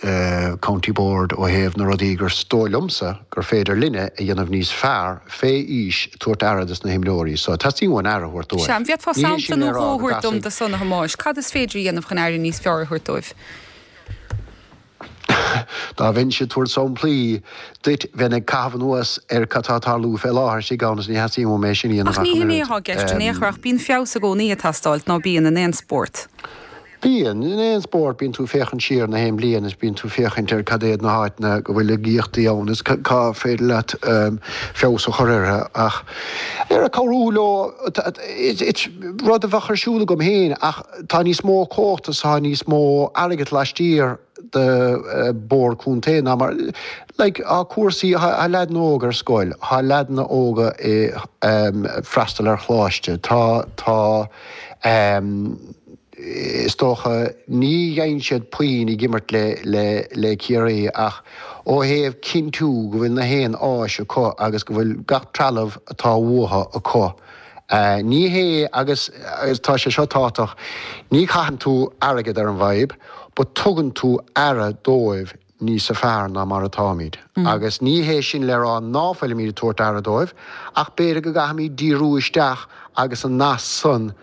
the County Board ó thaobh na rudaí gur is dóigh liomsa gur féidir linne a dhéanamh níos fearr fé aois tabhairt aire do sna himreoirí so teastaíonn uainn aire a thabhairt dóibh. Ní hé sin le rá go gcasfaidh. Sea, an bhféadfá sampla nó dhó a thabhairt dom do san a Thomáis? Cad is féidir a dhéanamh chun aire níos fearr a thabhairt dóibh? Dá mbeinnse ag tabhairt samplaí duit bheinn ag caitheamh anuas ar cad tá ag tarlú fé láthair istigh ann is ní theastaíonn uaim é sin a dhéanamh Ach ní shin é atá i gceist in aon chor ach bíonn feabhas i gcónaí ag teastáilt, ná bíonn, in aon spórt. Bíonn. In aon spórt bíonn tú ag féachaint siar na haon bhliain is bíonn tú ag féachaint ar cad iad na háiteanna go bhfuil laigíochtaí ann is cá féidir leat feabhas a chur orthu ach ar ag cabhrú leo is rud a bheadh ar siúl agam féin ach tá níos mó comhachta tá níos mó airgead laistiar de bord contae ná mar like tá cúrsaí tá leaideanna óga ar scoil tá leaideanna óga ag freastal ar choláiste tá tá is dócha ní dhein siad puinn ag imirt le le le Ciarraí ach ó thaobh cinntiú go bhfuil na haon áis acu agus go bhfuil gach trealamh atá uathu acu Ní hé, agus tá sé seo tábhachtach, ní chaitheann tú airgead ar an bhfadhb, but tugann tú aire dóibh níosa fearr ná mar atáimid. Agus ní hé sin le rá ná fuilimid ag tabhairt aire dóibh, ach b'fhéidir go gcaithfimid díriú isteach agus an nasc san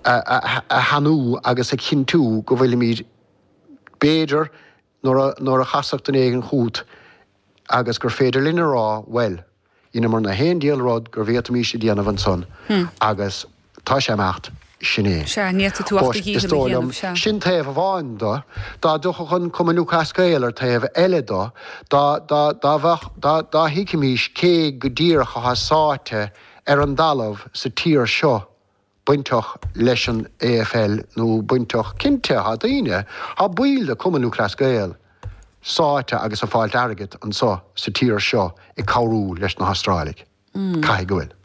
a shainiú agus a chinntiú go bhfuilimid b'fhéidir Nuair a chasfadh duine éigin chút agus gur féidir linn a rá, Bhuel, dheineamar na haon diabhal rud gur bhféadfaimís a dhéanamh ansan agus tá sé ag imeacht, sin é. Sea, n'fhéadfaidh tú ach do dhícheall a dhéanamh. Sea, is dóigh liom. Sea. Sin taobh amháin do. Dá dtiocfadh an Cumann Lúthchleas Gael ar taobh eile do, dá, dá, dá bheadh, dá, dá thuigfimís cé go díreach athá sáite ar an dtalamh sa tír seo, bainteach leis an AFL nó bainteach, cinnte, tá daoine, tá baill de Cumann Lúthchleas Gael sáite agus ag fáilt airgid anseo sa tír seo ag cabhrú leis na hAstráiligh. Caithfidh go bhfuil.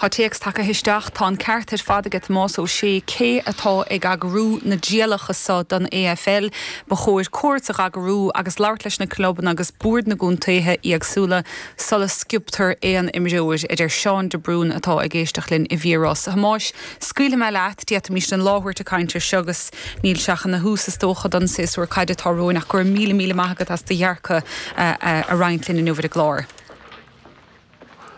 Tá téacs tagtha isteach, tá an ceart ar fad ag Tomás Ó Sé, cé atá ag eagrú na dtrialacha seo don AFL, ba chóir cuairt a eagrú agus labhairt leis na clubanna agus boird na gcontaetha éagsúla. sula sciobtar aon imreoir, a deir Seán de Brún atá ag éisteacht linn i bhFíor-Ros a Thomáis. Scaoilfidh mé leat, d'fhéadfaimíst an lá a thabhairt ag caint air seo agus níl sé ach ina thús is dócha don séasúr caide atá romhainn ach go raibh míle míle maith agat as do dhearcadh a roinnt linn inniu ar an gclár.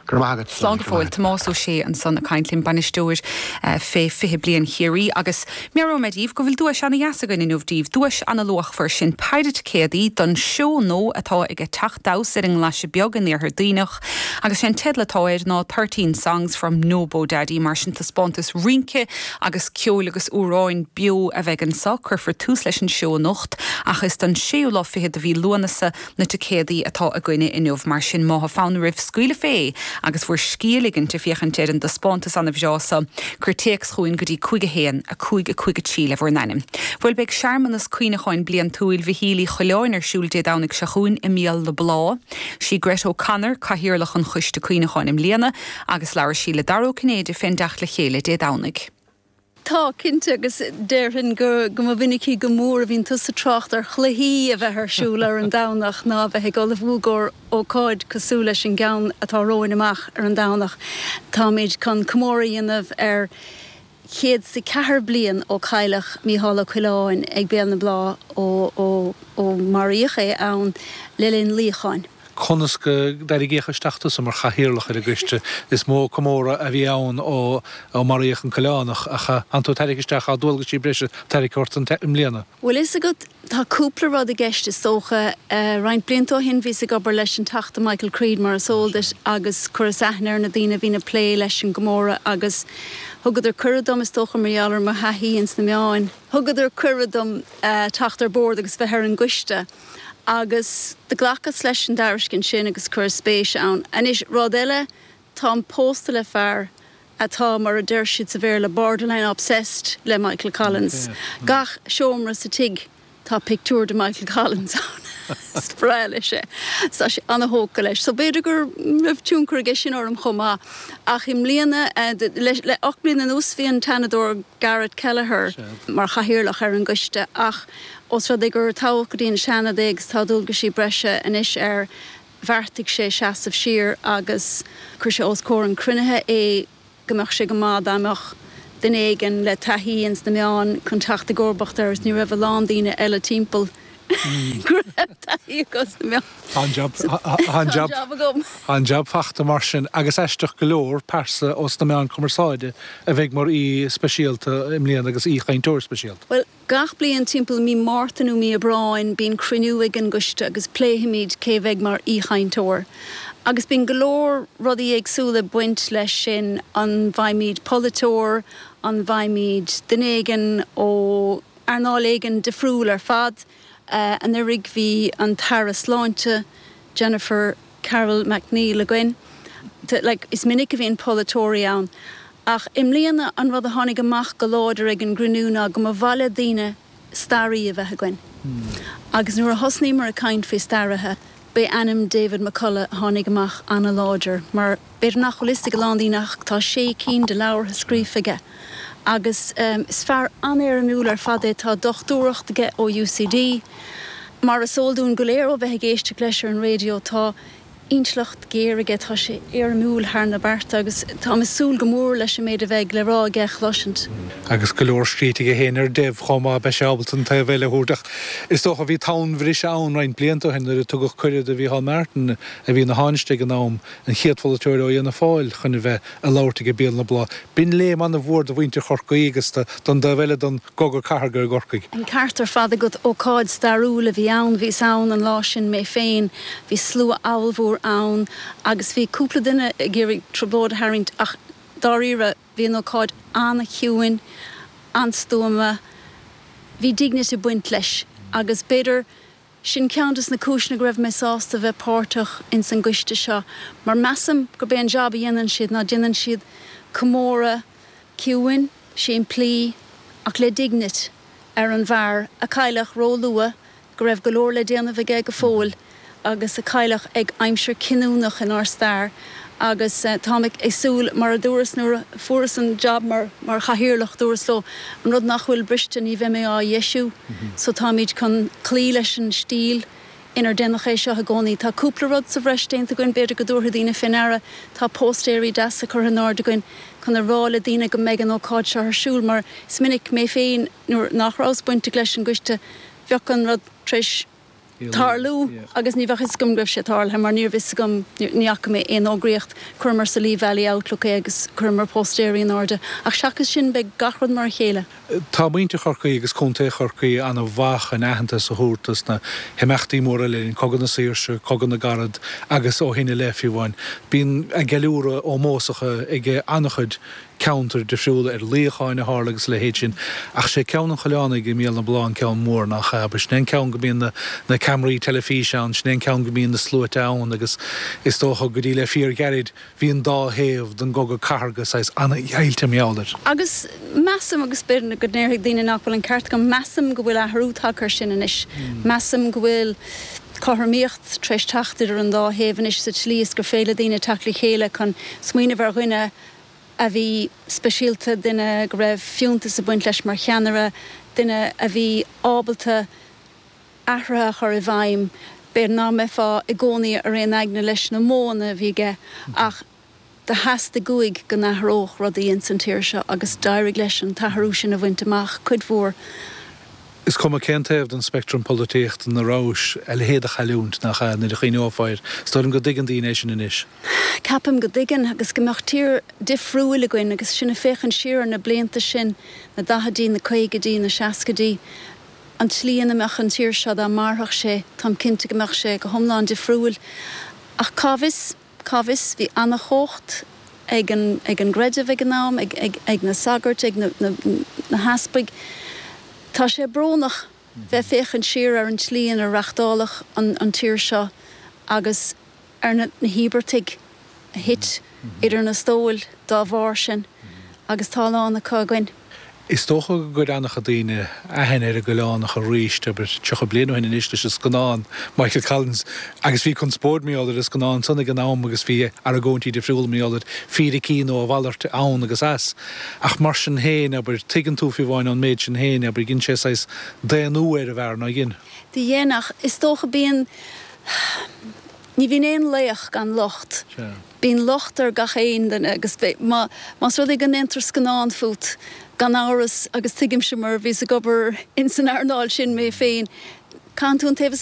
Go raibh maith agat. Slán go fóill. Tomás Ó Sé ansan ag caint linn, bainisteoir fé 20 bliain Chiarraí agus Meabhróimid díbh go bhfuil duais ana dheas againn inniu díbh, duais ana luachmhar, sin péire ticéadaí don seó nua atá ag Teach Damhsa ar an nGlaise Bheag in Iarthar Duibhneach agus sé an teideal atá air ná Thirteen Songs from Nobodaddy mar sin taispeántas rince agus ceoil agus amhráin beo a bheidh anseo. Cuirfear tús leis an seó anocht ach is don séú lá fichead de mhí Lúanasa Na ticéadaí atá againne inniu, mar sin, má tá fonn oraibh scaoileadh fé agus bhur scíth ligint ag féachaint ar an dtaispeántas ana bhreá so, cuir téacs chugainn go dtí 5 1, 5 5 3 le bhur n-ainm. Bhuel, beidh searmanas cuimhneacháin bliantúil Mhichíl Uí Choileáin ar siúl Dé Domhnaigh seo chugainn i mBéal na Blá. Sí Grett O'Connor cathaoirleach an choiste cuimhneacháin i mbliana agus labhair sí le Dara Ó Cinnéide fén dteacht le chéile Dé Domhnaigh. Tá, cinnte, agus déarfainn go mba mhinicí go mór a bhíonn tusa ag trácht ar chluichí a bheith ar siúl ar an Domhnach ná a bheith ag ullmhú i gcomhair ócáid cosúil leis an gceann atá romhainn amach ar an Domhnach. Táimid chun comóradh a dhéanamh ar chéad is a ceathair bliain ó cailleadh Mícheál Ó Coileáin ag Béal na Blá ó maraíodh é ann le linn luíocháin. Conas gur tarraingíodh isteach tusa mar chathaoirleach ar an gcoiste? Is mó comóradh a bhí ann ó maraíodh an Coileánach, ach an tú a tairrig isteach ár ndualgaisí breise a tharrac ort i mbliana? Bhfuil fhios agat, tá cúpla rud i gceist is dócha. Roinnt blianta ó shin bhíos ag obair leis an Teachta Michael Creed mar is eol duit agus chuireas aithne ar na daoine a bhíonn ag plé leis an gcomóradh agus thugadar cuireadh dom, is dócha mar gheall ar mo thaithí ins na meáin, thugadar cuireadh dom teacht ar bord agus bheith ar an gcoiste. Agus do ghlacas leis an dtairiscint sin agus chuireas spéis ann. Anois, rud eile, táim pósta le fear atá, mar a deir siad sa Bhéarla, borderline obsessed le Michael Collins. Gach seomra sa tigh tá pictiúr de Michael Collins ann. Is breá leis é. Tá sé ana-thógtha leis. So b'fhéidir go raibh tionchar aige sin orm chomh maith. Ach i mbliana, le ocht mbliana anuas, bhí an tSeanadóir Garret Kelleher mar chathaoirleach ar an gcoiste ach, Ós rud é gur toghadh go dtí an Seanad é agus tá dualgaisí breise anois air, bheartaigh sé seasamh siar agus chuir sé os comhair an chruinnithe é go mbeadh sé go maith dá mbeadh duine éigin le taithí ins na meáin chun teacht i gcomharbacht air agus ní raibh a lán daoine eile timpeall go raibh taithí acu sna meáin. Tá an jab agam. Tá an jab fachta mar sin agus aisteach go leor, pearsa ós na meáin cumarsáide a bheidh mar aoi speisialta i mbliana agus aoichainteoir speisialta. Bhuel, Gach bliain timpeall Mí Márta nó Mí Aibreáin bíonn cruinniú ag an gCoiste agus pléifimid cé a bheidh mar aoichainteoir. Agus bíonn go leor rudaí éagsúla ag baint leis sin, an bhfaighimid polaiteoir, an bhfaighimid duine éigin ó earnáil éigin difriúil ar fad. Anuraidh bhí an tAire Sláinte, Jennifer. Carroll MacNeill againn. Is minic a bhíonn polaiteoirí ann ach i mbliana an rud a tháinig amach go láidir ag an gcruinniú ná go mba mhaith le daoine staraí a bheith againn. Agus nuair a thosnaíomar ag caint faoi staraithe, b'é ainm David McCullagh a tháinig amach an-láidir mar. B'fhéidir nach bhfuil fhios ag a lán daoine ach tá sé cinn de leabhartha scríofa aige agus is fear an-éirimiúil ar fad é. Tá dochtúireacht aige ó UCD. Mar is eol dúinn go léir ó bheith ag éisteacht leis ar an raidió, tá intleacht ghéar aige, tá sé éirimiúil thar na bearta agus táim ag súil go mór leis an méid a bheidh le rá aige a chloisint. Agus go leor scríte aige féin ar Dev chomh maith, beidh sé ábalta an taobh eile a thabhairt. Ach is dócha, bhí tonnbhriseadh ann roinnt blianta ó shin nuair a tugadh cuireadh do Mhícheál Martin, a bhí ina Thánaiste ag an am, an chéad pholaiteoir ó Fhianna Fáil chun a bheith ag labhairt ag Béal na Blá, b'in léim an-mhór do mhuintir Chorcaí agus don dtaobh eile den gcogadh cathartha i gCorcaigh. An ceart ar fad agat, ócáid stairiúil a bhí ann, bhíos ann an lá sin mé féin, bhí slua abhalmhór ann agus bhí cúpla duine ag iarraidh trioblóid a tharraingt ach dáiríre bhí an ócáid an-chiúin, an-stuama, bhí dignity ag baint leis agus b'fhéidir Sin ceann de na cúiseanna go raibh mé sásta bheith páirteach ins an gcoiste seo, mar measaim gurb é an jab a dhéanann siad ná déanann siad comóradh ciúin, simplí, ach le dignit, ar an bhfear a cailleadh ró-luath, go raibh go leor le déanamh aige go fóill, agus a cailleadh ag aimsir cinniúnach inár stair. agus táim ag súil, mar a dúras nuair a fuaireas an jab mar chathaoirleach, dúras leo, an rud nach bhfuil briste, ní bheidh mé á dheisiú. So táimid chun cloí leis an stíl inar déanadh é seo i gcónaí. Tá cúpla rud sa bhreis déanta againn, b'fhéidir go dtabharfaidh daoine fé ndeara, tá póstaeirí deasa curtha in airde againn chun a rá le daoine go mbeidh an ócáid seo ar siúl, mar is minic, mé féin, nuair nach rabhas bainteach leis an gcoiste, bheadh an rud tar éis. tarlú agus ní bheadh 'fhios agam go raibh sé tarlaithe mar níorbh fhios agam, ní fhaca mé aon fhógraíocht, chuireamar sa Lee Valley Outlook é agus chuireamar póstaeirí in airde ach seachas sin beidh gach rud mar a chéile. Tá muintir Chorcaí agus Contae Chorcaí ana mhaith chun aitheantas a thabhairt dos na himeachtaí móra le linn Cogadh na Saoirse, Cogadh na gCarad agus ó shin i leith fiú amháin. Bíonn a gceiliúradh ómósach ag ana chuid ceantair difriúla ar luíocháin a tharla agus a leithéid sin. Ach sé ceann an Choileánaigh i mBéal na Blá an ceann mór, nach ea? Sin é an ceann go mbíonn na ceamaraí teilifíse ann, sin é an ceann go mbíonn na sluaite ann agus is dócha go dtí le fíorghairid bhí an dá thaobh den gcogadh cathardha saghas an-deighilte mar gheall air. Agus measaim, agus b'fhéidir go ndéarfaidh daoine nach bhfuil an ceart agam, measaim go bhfuil athrú tagtha air sin anois. Measaim go bhfuil cothromaíocht tar éis teacht idir an dá thaobh anois sa tslí is gur féidir le daoine teacht le chéile chun smaoineamh ar dhuine a a bhí speisialta, duine go raibh fiúntas ag baint leis mar cheannaire, duine a bhí ábalta athruithe a chur i bhfeidhm, b'fhéidir nach mbeifeá i gcónaí ar aon aigne leis na modhanna a bhí aige ach do theastaigh uaidh go n-athródh rudaí ins an tír seo agus d'éirigh leis an t-athrú sin a bhaint amach cuid mhór. Is cuma cén taobh den speictream polaitíochta ina rabhais, a leithéid de chailliúint, nach ea? Nuair a chuimhneofá air. Is dóigh liom go dtuigeann daoine é sin anois. Ceapaim go dtuigeann, agus go mbeadh tír difriúil againn agus sinn ag féachaint siar ar na blianta sin, na daichidí, na caogaidí, na seascaidí. An tslí ina mbeadh an tír seo dá mairfeadh sé, táim cinnte go mbeadh sé go hiomlán difriúil. Ach cá bhfios? Cá bhfios, bhí ana-chumhacht ag an gcreideamh ag an am, ag na sagairt, ag na heaspaig. Tá sé brónach bheith féachaint siar ar an tslí inar reachtáladh an tír seo agus ar na híobartaigh a thit idir na stóil dá bharr sin agus tá a lán acu againn. Is dócha gur chuir an-chuid daoine aithne ar an gCoileánach arís, abair, tríocha bliain ó shin anois, leis an scannán, Michael Collins, agus bhí conspóid, ar m'eolas, ar an scannán san ag an am agus bhí argóintí difriúla, ar m'eolas, fíricí nó a mhalairt, ann agus as. Ach mar sin féin, abair, tuigeann tú, fiú amháin ón méid sin féin, abair, dhein sé saghas daonnú ar an bhfear, nár dhein? Do dhein, ach is dócha bíonn, ní bhíonn aon laoch gan locht. Sea. Bíonn locht ar gach aon duine agus más rud é go ndéantar scannán fút, gan amhras, agus tuigimse mar bhíos ag obair ins an earnáil sin mé féin, caitheann tú an taobh is